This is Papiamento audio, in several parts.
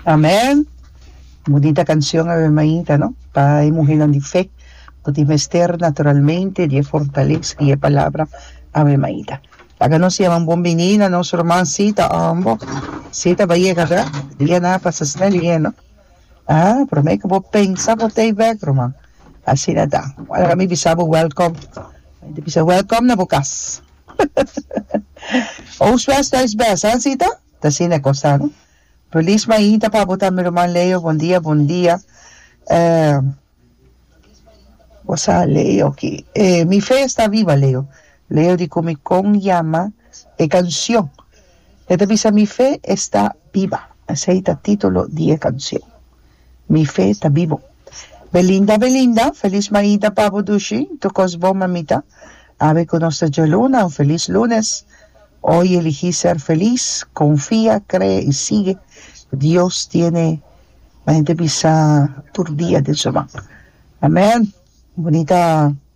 Amen! Bunita cancion awe mainta, no? Pa e muhernan di fe, bo tin mester naturalmente di e fortalesa di e Palabra. Awe mainta. Laga nos yaman bon bini na nos ruman Sita Ambo. Sita bayega ta, dia na a pasa snel lihé, no? Aa, prome cu bo pensa bo ta e bek, ruman. Asina ta. Bo a laga mi bisa bo welcome. Mi ta bisa welcome na bo cas. Ous best ais best, a así ta? Ta asina e cosa no. Feliz mainta pa bo tambe ruman Leo, bon dia bon dia. Eh, cosa Leo aki? Eh, mi fe está viva Leo. Leo di cu mi con yama e cancion. E ta bisa mi fe está viva. Esey ta titulo di e cancion. Mi fe ta bibo. Belinda Belinda, Feliz maida pa bo dushi, tur cos bon mamita, Awe cu nos ta dje luna, un feliz lunes, Hoy eligi ser feliz, confia, cree y sigue, Dios tiene Mende bisa tur dia den su man. Amen! Bonita.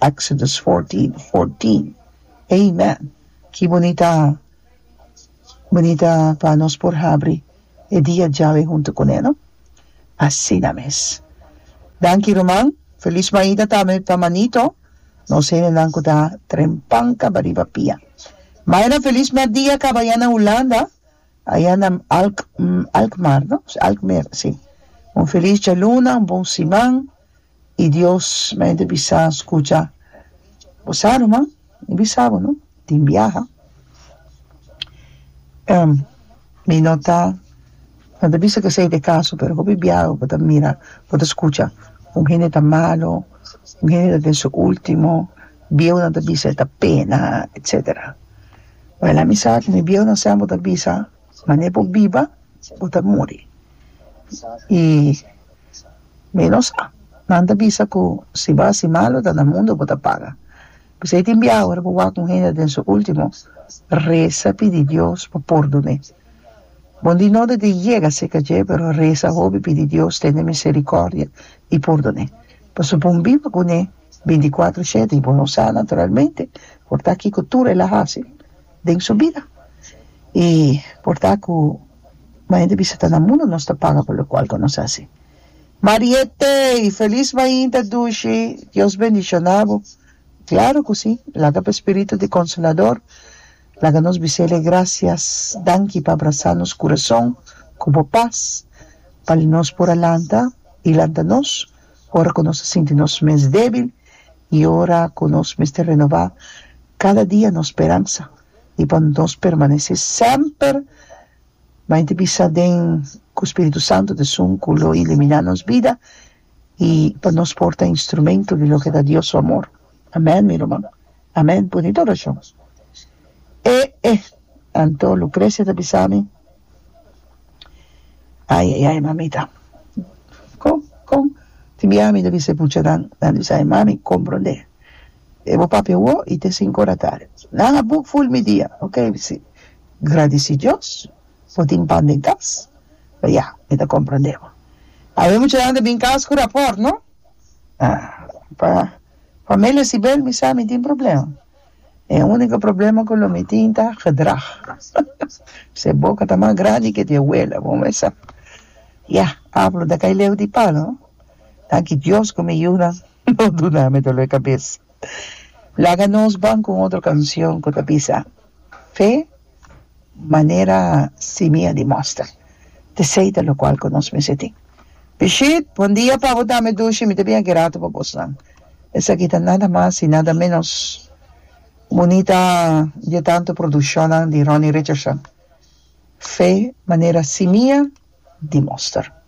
Exodus fourteen fourteen Amen! Ki bunita bunita pa nos por habri e dia djawe huntu cu ne no? Asina mes. Danki ruman. Feliz Maida tambe pa manito. Nos hendenan cu ta trempan caba riba pia. Myra feliz merdia caba ya na Hulanda aya na Alk Alkmaar no Alkmeer si. Un feliz djaluna un bon siman. I Dios me ta bisa, Skucha, bo sa no man, mi bisa bo no, tin biaha, en mi no ta, no ta bisa k'esei ta e kaso, pero hopi biaha ku bo ta mira, bo ta skucha, un hende ta malu, un hende ta den su ultimo, bieunan ta bisa e ta pena, etsetera. Well, ami sa ku mi bieunan semper ta bisa, mane bo biba, bo ta muri. I. Menos a. Nan ta bisa ku si bo hasi malu ta na mundu bo ta paga. P'esei tin biaha ora bo wak un hende den su último, resa pidi Dios pa pordon'é. Bo di no debe yega serka dje, pero resa hopi pidi Dios tende miserikòrdia i pordon'é. Pasobra bo un biba kuné. Binticuatro shete y bo no sa naturalmente por ta kico tur el a haci den su bida y por ta cu mas hende bisa ta na mundo nos ta paga por locual cu nos haci. Marietey! Feliz mainta dushi! Dios bendiciona bo. Claro cu si. Laga bo spiritu di Consolador laga nos bisele gracias, danki pa abrasa nos curason cu bo paz pa nos por a lanta y lanta nos ora ku nos ta sinti nos mes débil i ora ku nos mester renobá kada dia nos speransa i pa nos permanesé semper mai di bisa den ku spiritu santu ta esun ku lo iliminá nos bida i pa nos por ta instrumentu di loke ta Dios su amor. Amen mi ruman. Amen bunito orashon. E e anto Lucrecia ta bisami ai ai ai mamita con con tin bia mi ta bisa e pucha nan nan ta bisa ai mami comprende e bo papia wou y te cinco ora tarde nan a book full mi dia ok mi bisi gradeci Dios bo tin pan den cas ya mi ta comprende bo ai e muchanan ta bin cas cu raport no. pa familia Sibel mi sa mi tin problema e unico problema cu lo mi tin ta gedrag se boca ta mas grandi que di abuela bo me sa ya apel ta cay leu di palo danki Dios cu mi yu nan no duna mi dolor di cabeza laga nos ban con otro cancion cu ta bisa. Fe, manera simi a dimostra. Tesey ta locual cu nos mester tin. Brigitte, bon dia pabo dame dushi, mi ta bini aki rato pa bosnan. Esaki ta nada mas y nada menos bunita die tanto produccionnan di Ronnie Richardson. Fe, manera simi a dimostra.